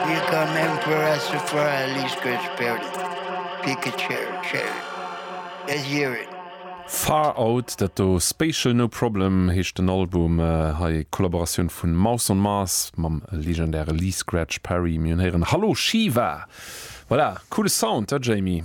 Hie kann Emperor Sephiroth a Liicht Gott spillen, Pikachu, Cheri, a Jiren. Far Out, dat do Spatial No Problem heescht den Album. Hei e Kollaboratioun vun Mouse on Mars mam legendäre Lee Scratch Perry. Mir hunn héieren Hallo Shiva. Voilà, coole Sound, he Jamie?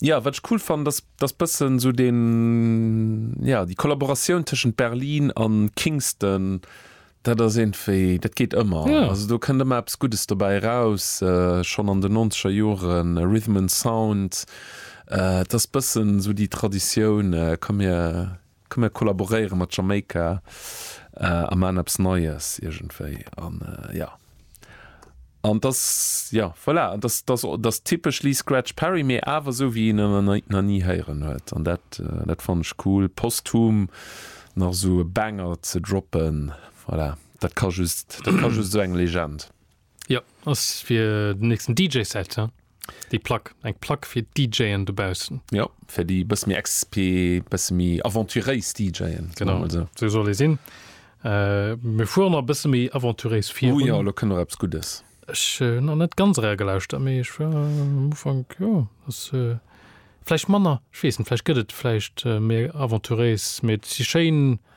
Ja, wat ech cool fannen, ass, dass bëssen esou den, ja, déi Kollaboratioun tëschent Berlin a Kingston, dat ass iergendwéi, dat geet ëmmer. Ja. Also do kënnt ëmmer eppes Guddes dobäi eraus. Schonn an den nonzeger Joren Rhythm and Sound, et ass bëssen esou déi Traditioun, komm mir, Komm mir kollaboréiere mat Jamaika a maan eppes Neies iergendwéi an jo. An et ass, jo, voilà, et ass, et ass typesch Lee Scratch Perry, mee awer esou wéi een en nach ni héieren huet. An dat, dat fannen ech cool, posthum nach esou e Banger ze droppen, voilà, dat ka just, dat ka just esou eng Legend. Ja ass fir den nächsten DJ-Set ja? Déi Plack, eng Plack fir d'DJen dobaussen. Jo, fir déi e bësse méi exp, bësse méi aventuréis DJen. Genau, esou soll ee sinn. Mir fuere nach e bësse méi aventuréis virun. Oh jo, elo kënnt nach eppes Guddes. Ech hunn nach net ganz eragelauschtert, mee ech war am Ufank, jo ass vläicht manner, ech weess net, vläicht gëtt et vläicht méi aventuréis, mee et si schéin.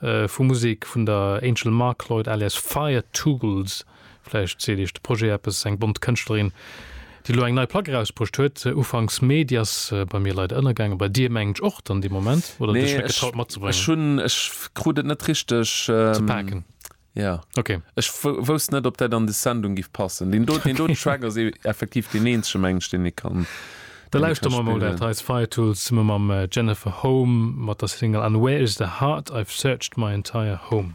vu Musek vun der Angel Markloyd alias Fire Tools, vläicht seet Iech de Projet eppes, eng bont Kënschtlerin, déi elo eng nei Plack erausbruecht huet, ufanks Mee. Déi ass bei mir leider ënnergaangen, bei dir mengen ech och dann dee Moment, oder huet Iech net getraut matzebréngen? Nee, ech krut et net richteg ze paken. Ja. Okay. Ech wousst net, ob dat an des Sendung giff passen. Deen do, deen do den Track ass effektiv deen eenzege mengen ech, deen ee kann. Da lauschteren mer emol dat hei ass Fire Tools zesumme mam äh, Jennifer Home mat der Single And Where Is The Heart I've Searched My Entire Home.